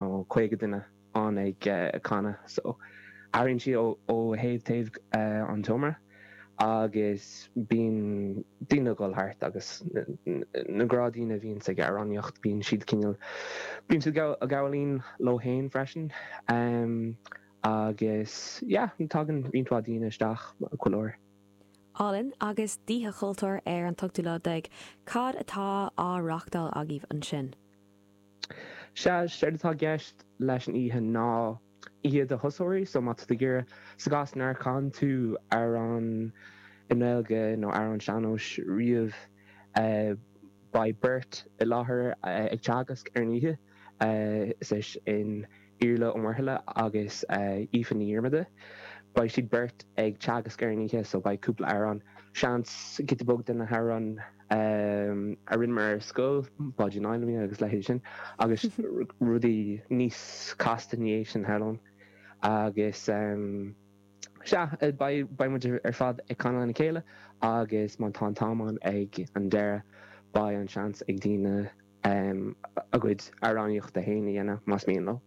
caoga duine ann ag canadh so airíonn siad ó thaobh taobh an tseomra agus bíonn daoine a dhul thart agus na gnáthdhaoine a bhíonns ag amhránaíocht bíonn siad cineál, bíonn siad ag gabháil fhoinn leo fhéin freisin agus yeah tagann roinnt mhaith daoine isteach chuile uair. Álainn agus d'Oíche Chultúir ar an ochtú lá déag, cad atá á reachtáil agaibh ansin? Sea, séard atá i gceist leis an oíche ná oíche do thosóirí, so má tá tú ag iarraidh, sa gcás nár chan tú amhrán i nGaeilge nó amhrán sean-nóis riamh, beidh beirt i láthair ag teagasc ar an oíche, is é sin, Iarla Ó Muirthile agus Aoife Ní Dhiarmada. Beidh siad beirt ag teagasc ar an oíche so beidh cúpla amhrán, seans, giota beag de na hamhráin a rinneamar ar scoil, Báidín Fheilimí agus leithéidí sin agus rudaí níos casta ina dhiaidh sin, shamhlóinn. Agus sea, beidh muid ar fad ag canadh lena chéile agus má tá an t-am ann ag an deireadh beidh an seans ag daoine, a gcuid amhránaíochta féin a dhéanamh, más mian leo.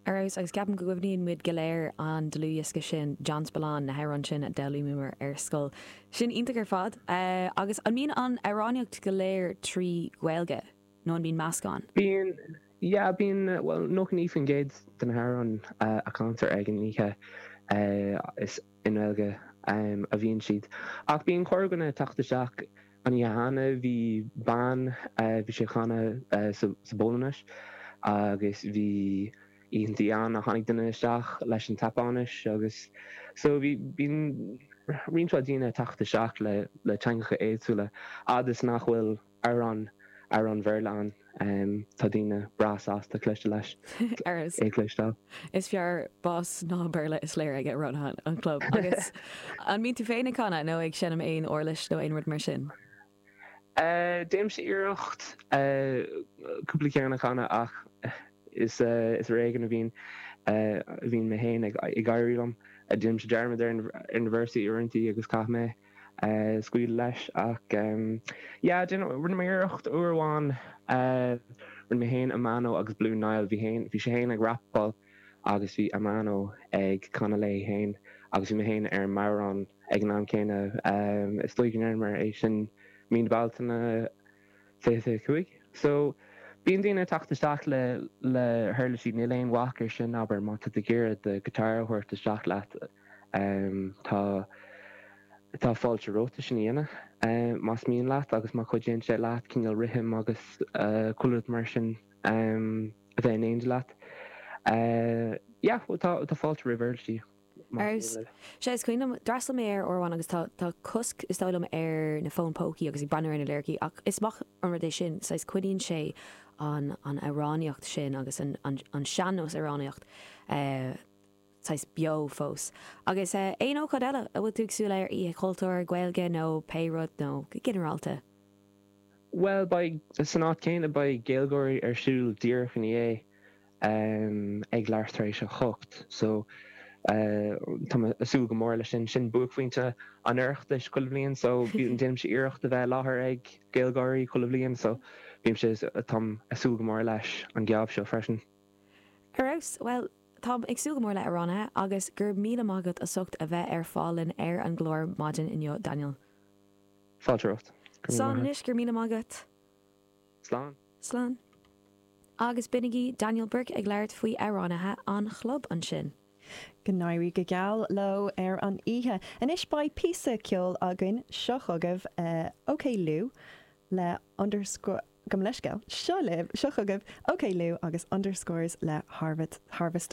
Ar fheabhas, agus ceapaim go gcuimhníonn muid go léir an dlúthdhiosca sin John Spillane, na hamhráin sin a d'fhoghlaíomar ar scoil. Sin iontach ar fad. Agus an mbíonn an amhránaíocht go léir trí Ghaeilge nó an mbíonn meascán? Bíonn, yeah, bíonn, bhuel, nócha naoi faoin gcéad de na hamhráin a chantar ag an oíche is. I nGaeilge a bhíonn siad. Ach bíonn corrdhuine ag teacht isteach. An oíche cheana bhí bean, bhí sí ag canadh sa bPolainnis agus bhí oícheanta ann a tháinig duine isteach leis an tSeapáinis agus. So bíonn roinnt mhaith daoine ag teacht isteach le teangacha éagsúla a fhad is nach bhfuil. amhrán amhrán Béarla ann. Tá daoine breá sásta éisteacht leis. É a chloisteáil. is fearr bás ná Béarla is léir agaibh mar mhana an chlub. Agus an mbíonn tú féin ag canadh nó ag seinm aon uirlis nó aon rud mar sin? Déanaimse iarracht cúpla ceann a chanadh ach is ar éigean a bhíonn bhíonn mé féin ag éirí liom. Déanaimse dearmad ar na véarsaí uaireanta agus caithfidh mé. scaoileadh leis ach yeah, déan, rinne mé iarracht uair amháin, rinne mé féin, Amano agus Blue Niall, bhí féin, bhí sé féin ag rapáil agus bhí Amano ag canadh léi féin agus bhí mé féin ar an mbodhrán ag an am céanna, is dóigh go ndearnamar é sin Mí na Bealtaine, fiche cúig. So, bíonn daoine ag teacht isteach le, le huirlisí, níl aon bhac ar sin, abair, má tá tú ag iarraidh do guitar a thabhairt isteach leat, tá, tá fáilte romhat é sin a dhéanamh, más mian leat agus má chuidíonn sé leat cineál rithim agus chuile rud mar sin a bheith in éineacht leat, yeah, tá, tá fáilte roimh uirlisí. sé is cuimhin liom. D'fhreastal mé air uair amháin agus tá tá cosc is dóigh liom ar na fón pócaí agus ag breathnú ar na liricí ach is maith an rud é sin saghas coinníonn sé an an amhránaíocht sin agus an an an sean-nós amhránaíocht saghas beo fós agus aon ócáid eile a bhfuil tú ag súil air, Oíche Chultúir, Gaeilge nó pé rud nó go ginearálta? Bhuel beidh, san áit chéanna beidh GaelGÁIRÍ ar siúl díreach ina dhiaidh. em, ag leathuair tar éis a hocht, so eh tá mé ag súil go mór leis sin, sin buaicphointe an Oireachtais chuile bhliain so bím, déanaimse iarracht a bheith i láthair ag GaelGÁIRÍ chuile bhliain so bímse, táim ag súil go mór leis an geábh seo freisin. Ar fheabhas, bhuel táim ag súil go mór le hAmhránaithe agus gura míle maith agat as ucht a bheith ar fáil linn ar an gclár maidin inniu Daniel. Fáilte romhat. Seán anois, gura míle maith agat. Slán! Slán. Agus b'in é Daniel Burke ag labhairt faoi amhránaithe an chlub ansin! Go n-éirí go geal leo ar an oíche. Anois beidh píosa ceoil againn. Seo chugaibh Oklou le, gabh mo leithscéal, seo libh, seo chugaibh Oklou agus Underscores le Harvest.